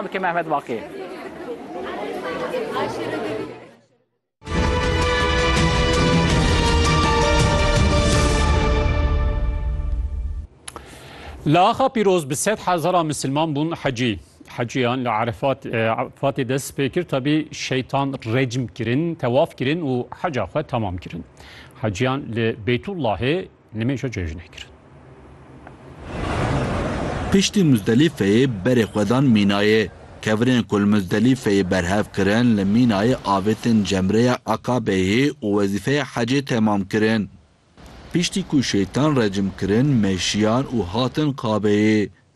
Bike Mehmet Baqi. Li axa pîroz bi sed hezara misilman bûn hecî. Hecîyan li Arefat Fatê dest pê kir tabî şeytan recm kirin, tewaf kirin û heca xwe tamam kirin. Hecîyan li Beytullahê Nimêja cejnê kirin. Piştî Muzdelîfeyê berê xwe dan Mînayê. Kevirên ku li Muzdelîfeyê berhev kirin li Mînayê avêtin Cemreya Aqabeyê û wezîfeya hecê temam kirin. Piştî ku şeytan recm kirin meşiyan û hatin Qabeyê.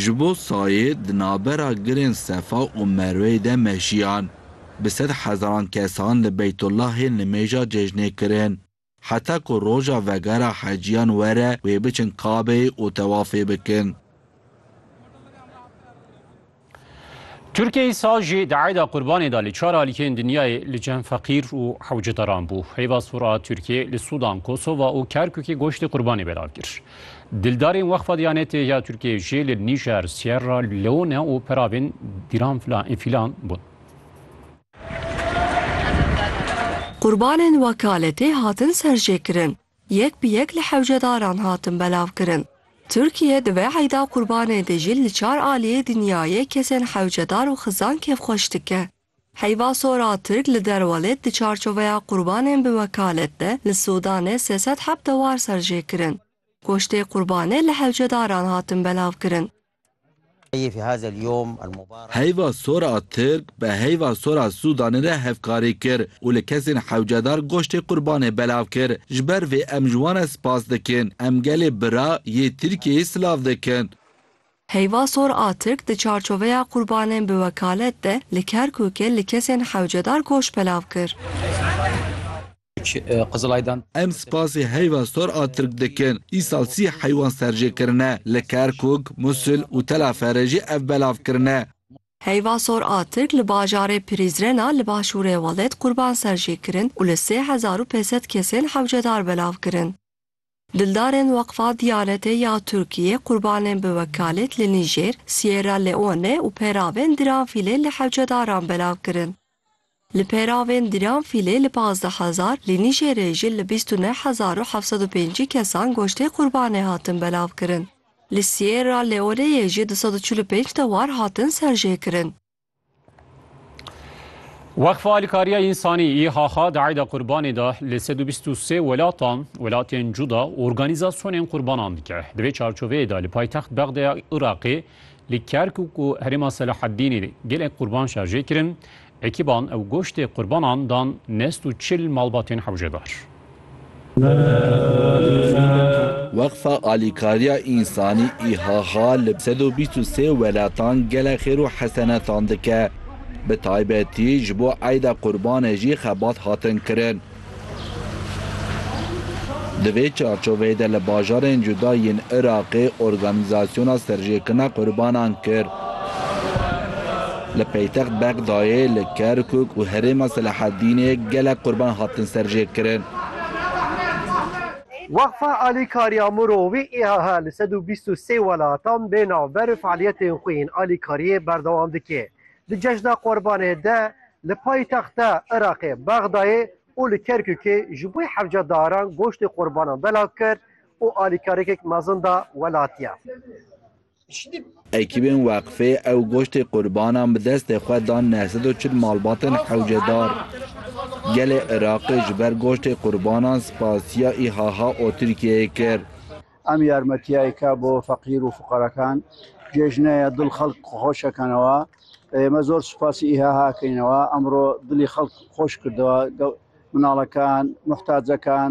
Ji bo sayê di navbera girên Sefa û Merweyê de meşiyan, bi sed hezaran kesan li Beytullahê nimêja cejnê kirin. Heta ku roja vegera heciyan were wê biçin Kabeyê û tewafê bikin. Tirkiyeyê saz jî di eyda qurbanê de li çar alîkeyên dinyayê li cem feqîr û hewcedaran bû. Heyva sor a Tirkiyê li Sûdan, Kosova û Kerkûkê goştê qurbanê belav kir. Dildarên Weqfa Diyanetê ya Tirkiyeyê jî li Nîjer, Sierra Leone û peravên dîran filan bûn. Qurbanên wekaletê hatin serjêkirin. Yek bi yek li hewcedaran hatin belavkirin. Tirkiye di vê eyda qurbanê de jî li çar aliyê dinyayê kesên hewcedar û xizan kêfxweş dike. Heyva sora Tirk li Derwalêt di çarçoveya qurbanên bi wekalet de li Sûdanê sê sed heft dewar serjêkirin. Goştê qurbanê li hewcedaran hatin belavkirin. Heyva sor a Tirk bi heyva sor a Sûdanê re hevkarî kir û li kesên hewcedar goştê qurbanê belav kir. Ji ber vê em ji wan re spas dikin. Em gelê bira yê Tirkiyeyê silav dikin. Heyva sor a Tirk di çarçoveya qurbanên bi wekalet de li Kerkûkê li kesên hewcedar goşt belav kir. Qizilaydan. Em spasê heyva sor a Tirk dikin. Îsal sî heywan serjê kirine. Li Kerkûk, Musil û Telaferê jî ev belav kirine. Heyva sor a Tirk li bajarê Pirîzren a li başûrê welêt qurban serjê kirin û li sê hezar û pênsed kesên hewcedar belav kirin. Dildarên Weqfa Diyanetê ya Tirkiyê qurbanên bi wekalêt li Nîjêr, Sierra Leone û peravên Diranfîlê li hewcedaran belav kirin. Li peravên Diranfîlê li pazdeh hezar, li Nîjêrê jî li bîst û neh hezar û heft sed û pêncî kesan goştê qurbanê hatin belavkirin. Li Sierra Leoneyê jî du sed û çil û pênc dewar hatin serjêkirin. Weqfa Alîkariya Însanî IHH di eyda qurbanê de li sed û bîst û sê welatan welatên cuda organîzasyonên qurbanan dike. Di vê çarçoveyê de li paytext Bexdaya Iraqê li Kerkûk û herêma Selaheddînê gelek qurban şarjê kirin. Ekîban ew goştê qurbanan dan nest û çil malbatên hewcedar. Weqfa Alîkariya Însanî, IHH, li sed û bîst û sê welatan gelek xêr û hesenetan dike. Bi taybetî ji bo Eyda Qurbanê jî xebat hatin kirin. Di vê çarçoveyê de li bajarên cuda yên Iraqê organîzasyona serjêkirina qurbanan kir. Li paytext Bexdayê, li Kerkûk û herêma Selaheddînê gelek qurban hatin serjêkirin. Weqfa Alîkariya Mûro wî îHH li sed û bîst û sê welatan bê navber fealiyetên xwe yên alîkariyê berdewam dike. Di cejna qurbanê de li paytexta Iraqê Bexdayê û li Kerkûkê ji bo hevca daran goştê qurbanan belav kir û alîkariyekek mezin da welatiyan. Ekîbên weqfê ew goştê qurbanan bi destê xwe dan neh sed û çil malbatên hewcedar. Gelê Iraqê ji ber goştê qurbanan spasiya IHH û Tirkiyeyê kir. Em yarmetiyayeke bo feqîr û fuqerekan cejne ye, dil xelk xweş ekenewa. Me zor spasî IHH ekenewa, emro dilî xelk xweş kirdewa, minalekan, muhtacekan.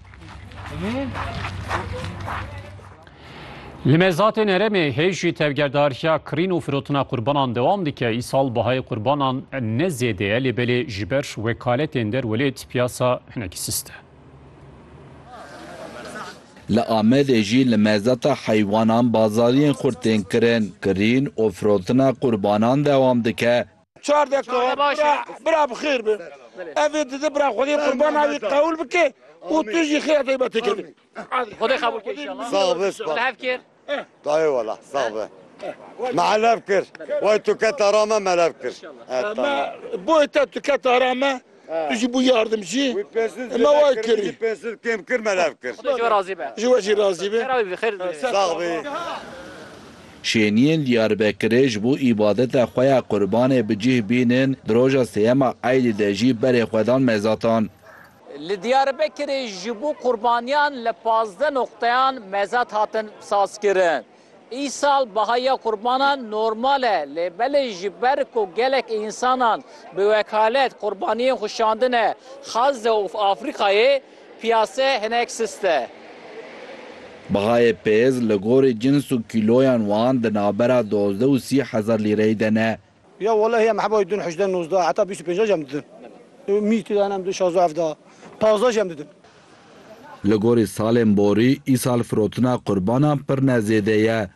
Li Mezatên Herêmê hêj jî tevgerdariya kirîn û firotina qurbanan dewam dike. Îsal bihayê qurbanan ne zêde ye lê belê ji ber wekaletên derwelêt piyasa hinekî sist e. Li Amedê jî li mezata heywanan bazariyên xurt tên kirin. Kirîn û firotina qurbanan dewam dike. Çar deka bira bira bi xêr be. Evê dide bira Xwedê qurbana wî qewil bike û tu jî xêra taybetê kenê. Xwedê qebûl ke înşallah. Sağ ol Espa. Li hev kir. Dayê wala sağ be. Me elev kir. Way tu keta ra me me elev kir. He tamam. Boyê te tu keta ra me. Tu jî bû yardim jî. Wî pensûl Ema zêde wa kir, min kirî. jî pensûl kêm kir me lev kir. Xweda ji we razî be. Ji we jî razî be. Xêra wî bidî, xêr dibîne. Sax bî. Şêniyên Diyarbekirê ji bo îbadeta xwe ya Qurbanê bi cih bînin, di roja sêyema Eydê de jî berê xwe dan mezatan. Li Diyarbekirê ji bo Qurbaniyan li pazdeh noqteyan mezat hatin sazkirin. Îsal bahaya qurbanan normal e, lê belê ji ber ku gelek însanan bi wekalet qurbaniyên xwe şandine Xaze û Afrîkayê, piyase hinek sist e. Bahayê pêz li gorî cins û kîloyan wan di navbera dozdeh û sî hezar lîreyê de ne. Ya walahi em heba didin hejdeh nozdeh heta bîst û pênceh jî em didin. Mîr tê de hene em didin şazdeh hevdeh pazdeh jî em didin. Li gorî salên borî îsal firotina qurbanan pir ne zêde ye.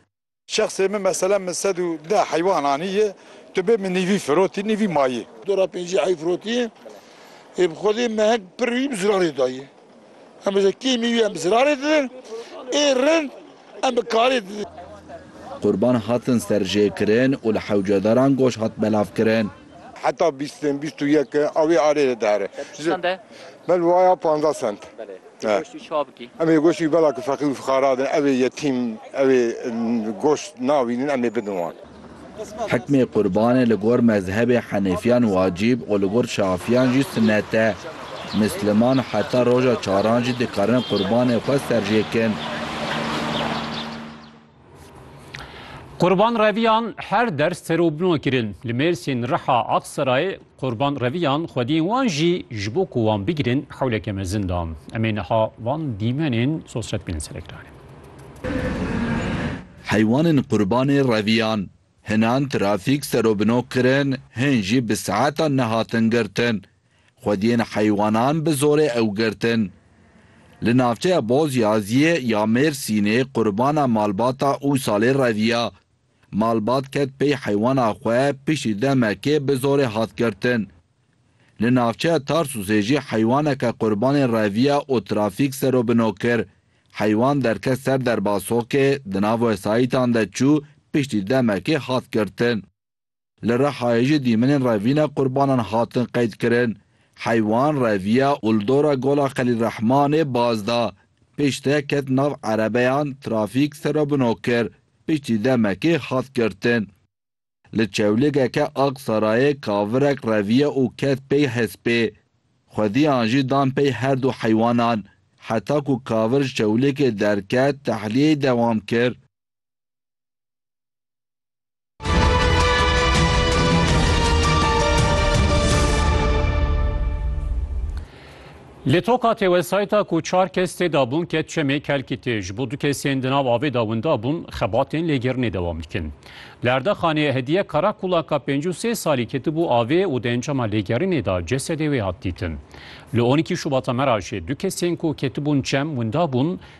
Şexsê min meselen min sed û deh heywan anîye tu bê min nîvî firotî nîvî mayî. Dora pêncî heyw firotî yê bi xwedê mehek pirrî bi ziranê dayî. Em bi zekiyê mîwî em bi zirarê didin, ê rind em bi karê didin. Qurban hatin serjêkirin û li hewcedaran goş hat belavkirin. Heta bîst in, bîst û yek in a wê arê de dihere. Te çi send e? Me li waya panzdeh send. Belê. Ê goşt wî çawa bikî? Em ê goşt wî bela ku feqîr û fixara din, ew ê yetîm, ew ê goşt nabînin em ê bidin wan. Hikmê qurbanê li gor mezhebê henêfiyan wacîb û li gor şafiyan jî sunet e. Misliman heta roja çaran jî dikarin qurbanê xwe serjêkin. Qurban reviyan her der ser û bino kirin. Li Mêrsîn, Riha, Aksarayê Qurban reviyan xwediyên wan jî ji bo ku wan bigirin hewleke mezin dan. Em ê niha van dîmenên sosret bînin ser ekranê. Heywanên qurbanê reviyan hinan trafîk serobino kirin, hin jî bi saetan nehatin girtin. Xwediyên heywanan bi zorê ew girtin. Li navçeya Bozyaziyê ya Mêrsînê qurbana malbata û salê reviya. Malbat ket pey heywana xwe piştî demekê bi zorê hat girtin. Li navçeya Tarsûsê jî heywaneke qurbanê reviya û trafîk serobino kir. Heywan derket ser derba sokê, di nav wesayîtan de çû, piştî demekê hat girtin. Li Rihayê jî dîmenên revîna qurbanan hatin qeydkirin. Heywan reviya û li dora Gola Xelîl Rehmanê baz da. Piştre ket nav erebeyan, trafîk serobino kir, piştî demekê hat girtin. Li çewligeke Aksarayê kavirek reviye û ket pey hespê. Xwediyan jî dan pey her du heywanan. Heta ku kavir ji çewligê derket, tehliyeyê dewam kir. Li toka têwesayta ku çar kes tê de bûn ket çemê kelkîtê ji bo du kesên di nav avê de winda bûn xebatên lêgirinê dewam dikin. Li Erdexanê Hediye Karakulaka pêncî û sê salî ketibû avê û di encama lêgirinê de cesedê wê hat dîtin. Li on îkî Şubata me re jî du kesên ku ketibûn çem winda bûn